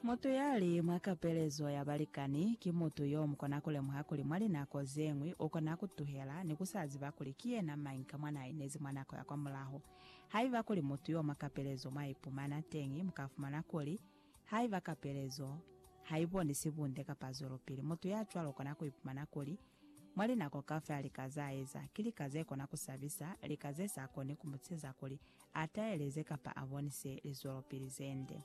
Mutu ya li mwa kapelezo ya balikani ki mutu yo mu kona ku lemuha kuli mwa linako ze ñwi u kona ku tuhela ni ku sa ziba kuli ki yena mañi ka mwa n'a inezi mwa nako ya kwamulaho. Haiba kuli mutu yo mwa kapelezo mwa ipumana teñi, mu ka fumana kuli, Haiba kapelezo ha i bonisi bunde kapa zwelopili, mutu ya cwalo u kona ku ipumana kuli, mwa linako kaufela lika z'a eza ki lika ze kona ku sabisa, lika ze sa koni ku mu ceza kuli a taeleze kapa a bonise lizwelopili ze nde.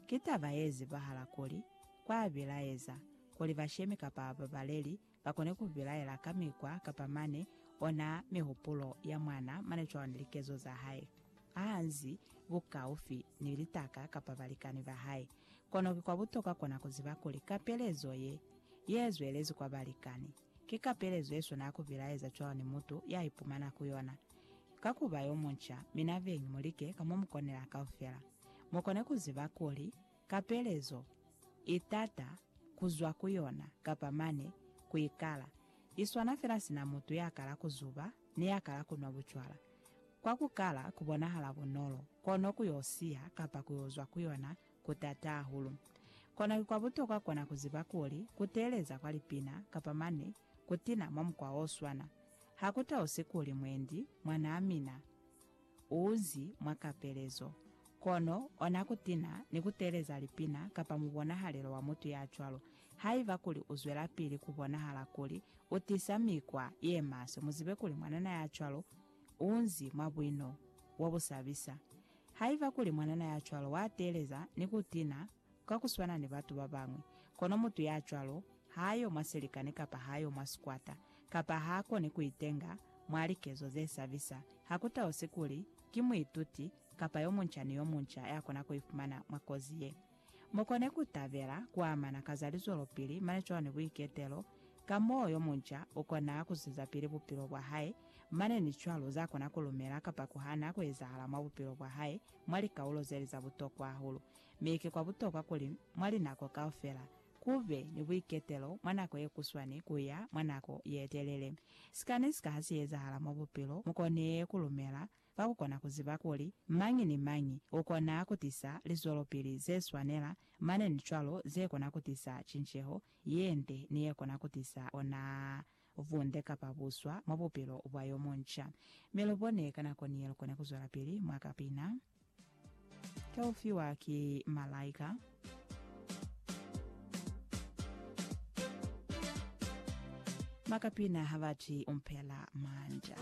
Ki taba ye zibahala kuli, kwa bilaeza kuli bashemi kapa babaleli ba kone ku bilaela ka mikwa kapa mane ona mihupulo ya mwana mane cwalo ni likezo za hae ha nzi bukaufi ni litaka kapa balikani ba hae. Kono ki kwa butokwa kona ku ziba kuli kapelezo ye, ye zwelezi kwa balikani. Ki kapelezo yeswana ya kubilaeza cwalo ni mutu ya ipumana ku yona. Ka kuba yo munca, mi nabeñi mulike ka mo mukonela kaufela. Mukone kuziba kuli, kapelezo i tata kuzwa ku yona kapa mane ku ikala. Iswana fela sina mutu ya kala kuzuba ni ya kala kunwa bucwala. Kwa kukala kubonahala bunolo, kono ku yo siya kapa ku yo zwa ku yona ku taata hahulu. Kono ki kwa butokwa kona ku ziba kuli ku teeleza kwa lipina kapa mane ku tina mwa mukwa o swana ha ku tausi kuli mwendi mwanaa mina u uzi mwa kapelezo. Kono ona ku tina ni ku teeleza lipina kapa mubonahalelo wa mutu ya cwalo haiba kuli u zwelapili ku bonahala kuli u tisa mikwa ye maswe. Mu zibe kuli mwanana ya cwalo u unzi mwa buino bo bu sabisa. Haiba kuli mwanana ya cwalo wa teeleza ni ku tina ka ku swana ni batu ba bañwi, kono mutu ya cwalo ha a yo mwa silikani kapa ha a yo mwa sikwata, kapa ha a koni ku itenga mwa likezo ze sabisa, ha ku talusi kuli ki muituti kapa yo munca ni yo munca ya kona ku ifumana mwa kozi ye. Mu kone ku tabela ku amana ka za lizwelopili mane cwalo ni buiketelo, ka moo yo munca u kona ku zwezapili bupilo bwa hae, mane ni cwalo za kona ku lumela kapa ku hana ku ezahala mwa bupilo bwa hae mwa likaulo ze li za butokwa hahulu. Mi ki kwa butokwa kuli mwa linako kaufela ku be ni buiketelo mwa nako ye kuswani ku ya mwa nako ye telele. Sika ni sika ha si ezahala mwa bupilo, mu kone ku lumela ka ku kona ku ziba kuli mañi ni mañi u kona ku tisa lizwelopili ze swanela mane ni cwalo ze kona ku tisa cinceho ye nde ni ye kona ku tisa ona vunde kapa buswa mwa bupilo bwa yo munca. Mi lu bone ka nako ni ye lu kona ku zwelapili mwa ka pina ka u fiwa ki malaika. Mwa ka pina ha ba ti u mpela manda.